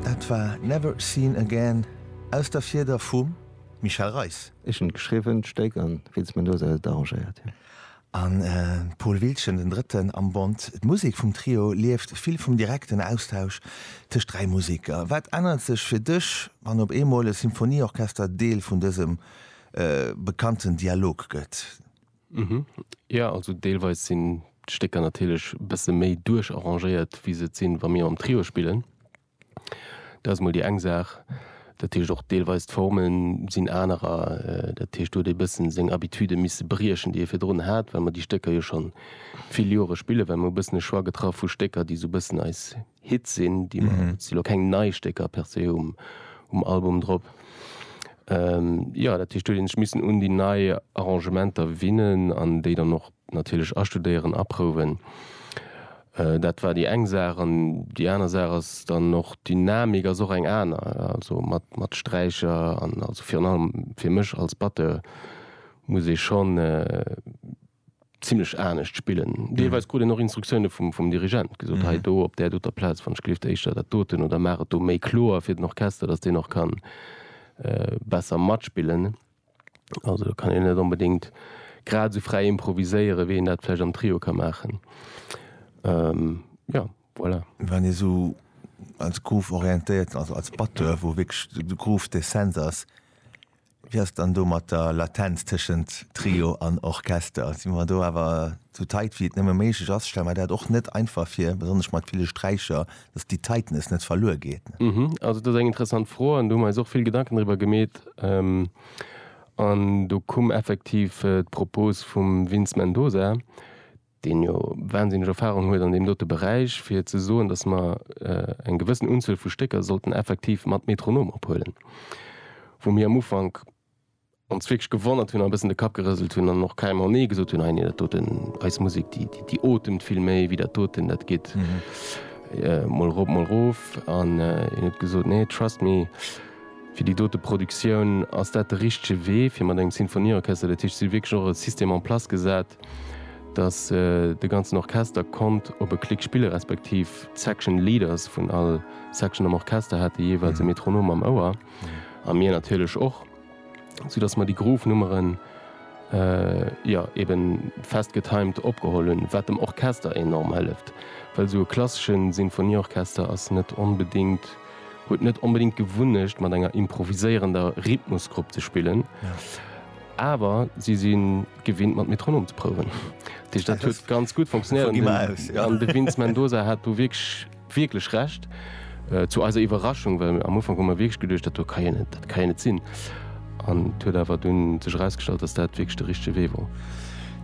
Dat war Never Seen Again aus der Fieder vum Michel Reis. Ech hun et geschriwwen, d'Stéck, an Vince Mendoza huet et arrangéiert. An Paul Wiltgen, den drëtten am Bond. D'Musek vum Trio lieft vill vum direkten Austausch tëscht dräi Museker. Wat ännert sech fir dech, wann op eemol e Symphonieorchester Deel vun dësem bekannten Dialog gëtt? Mhm, jo, also deelweis sinn d'Stécker natierlech e bësse méi duercharrangéiert, wéi se et sinn, wa mir mam Trio spillen. Dat ass mol déi eng Saach. Dat heescht, och deelweis d'Forme sinn anerer. Dat heescht, do huet ee bëssen seng Habitude misse briechen, déi ee virdrun hat, well mer déi Stécker jo scho vill Jore spillen, well mer hu bëssen e Choix getraff vu Stécker, déi esou e bëssen eis Hit sinn, déi mer, et si lo keng nei Stécker per se um Album drop. Jo, dat heescht do hunn ech missen un déi nei Arrangementer winnen an déi dann och natierlech astudéieren, aprouwen. Dat war déi eng Saach an déi aner Saach ass dann och, d'Dynamik ass och eng aner, also mat Sträicher an also virun allem fir mech als Batteur muss ee schonn, zimlech anescht spillen, deelweis krut een och Instruktioune vum Dirigent, gesot, hei do op där doter Plaz, wann ech gelift, éischter dat doten oder maach et do méi kloer fir den Orchester, datt deen och ka besser matspillen. Also do kann een net onbedéngt grad esou fräi improviséieren, wéi een dat vläicht am Trio ka maachen. Jo, voilà. Wann ee sou als groove-orientéierten, also als Batteur, wou wierklech de Groove d'Essenz ass, Wéi ass et dann do mat der Latenz tëschent Trio an Orchester? Si mer do awer esou tight wéi et nëmme méiglech ass? Stelle mer dat och net einfach vir, besonnesch mat ville Sträicher, dass déi Tightness net verluer geet? Also et ass eng interessant Fro an do hu mer eis och vill Gedanken driwwer gemeet an do koum effektiv d'Propos vum Vince Mendoza, deen jo wahnsinneg Erfahrung huet an deem dote Beräich, fir ze soen, dass mer eng gewëssen Unzuel vu Stécker sollten effektiv mat Metronom ophuelen, wou mir am Ufank ons wierklech gewonnert hunn a e bëssen de Kapp gerëselt hunn an och keimer Nee gesot hunn, Hei, nee, dat doten, eis Musek, déi, déi otemt vill méi wéi dat doten, dat geet mol erop, mol erof. An hien huet gesot, Nee, trust me. Fir déi dote Produktioun ass dat de richtege Wee, fir mat engem Sinfonieorchester, dat heescht, si hu wierklech och e System en place gesat, dass de ganzen Orchester konnt op e Klick spille respektiv d'Section leaders vun all Section am Orchester hate jeeweils e Metronom am Ouer, a mir natierlech och, soudass mer déi Groove-Nummeren, jo, ebe fest getimed opgeholl hunn, wat dem Orchester enorm hëlleft, well esou e klassesche Sinfonieorchester ass net onbedéngt. huet net onbedingt d'Gewunnecht mat enger improviséierender Rhythmusgrupp ze spillen, awer si si gewinnt mat Metronom ze prouwen. Dat heescht dat huet ganz gutt funktionéiert an de Vince Mendoza hat do wierklech Recht. Zu eiser Iwwerraschung, well am Ufank hu mer wierklech geduecht, dat do ka jo net, dat ka jo net sinn, an et huet awer dunn sech erausgestallt, datt dat wierklech de richtege Wee wor.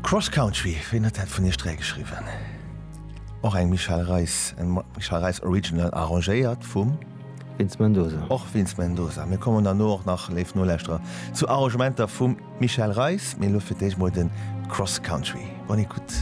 Cross Country, wien huet dat vun Iech dräi geschriwwen? Och eng Michel Reis, eng Michel Reis Original arrangéiert vum. Vince Mendoza. Och Vince Mendoza. Mir kommen derno och nach, léif Noläschterer, zu Arrangementer vum Michel Reis, mee elo fir d'éischt mol de Cross Country. Bonne écoute.